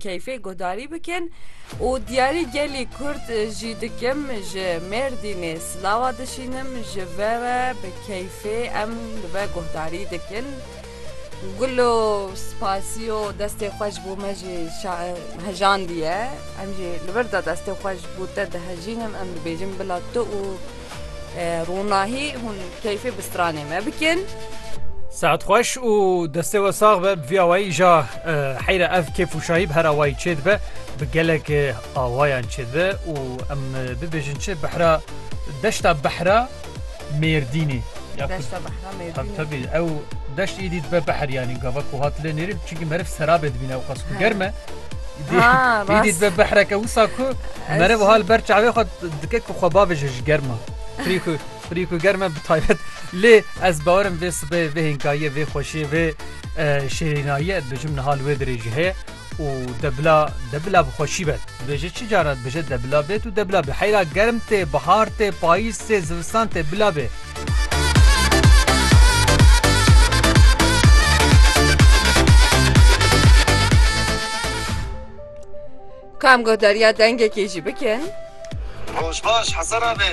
keyfê guhdarî bikin û diyarî gelî Kurd jî dikim ji Mêrdînê silawa dişînim ji ve re bi keyfê em li ve guhdarî dikin Gulo spasiyo destê xwe ji bo me jî hejandiye em jî li vir de destê xwe ji bo te dihejînim em dibêjin bila tu û Ronahî hûn keyfê bi stranê me bikin. Saet xweş û destê we sax be bi vî awayî îja heyre ev kêf û şahî bi her awayî çêdibe bi gelek awayan çêdibe û em bibêjin çi behra deşta behra mêrdînê ya Deşta behra Tabi tabi ew deşt êdî dibe behr yanî gava ku hat lê nêrîn çinkî meriv serabê dibîne ew qas ku germ e. Êdî dibe behreke wisa ku meriv hal ber çavê xwe dike ku xwe bavêje ji germa. Frî ku frî ku germ e bi taybet lê ez bawerim vê sibê vê hênkayiyê vê xweşiyê vê şêrînayiyê ez dibêjim niha li wê dirêjî heye. û debila debila bi xweşî be. Dibêje çi cara dibêje debila bêt û debila be. Heyra germ tê, bihar tê, payîz tê, zivistan tê bila bê. Ka em guhdarîya dengekê jî bikin. Roj baş Hesen abi.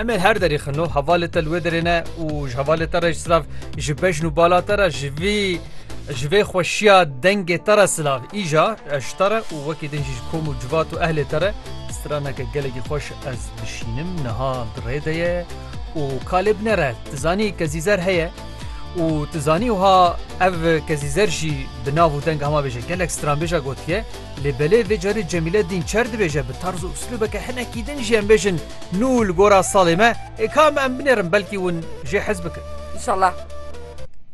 Em ê her derî xino hevalê te li wê derê ne û ji hevalê te re ji silav ji bejn û bala te re ji vî ji vê xweşiya dengê te re silav îja ez ji te re û wekî din jî ji kom û civat û ehlê te re straneke gelekî xweş ez dişînim niha di rê de ye û ka lê binere tu zanî kezîzer heye û tu zanî wiha ev kezîzer jî bi nav û deng hema bêje gelek stranbêja gotiye lê belê vê carî Cemîle dîn çer dibêje bi tarz û uslûbeke hinekî din jî em bêjin Nû li gora salê me. Ê ka me em binêrin belkî hûn jê hez bikin. Înşallah.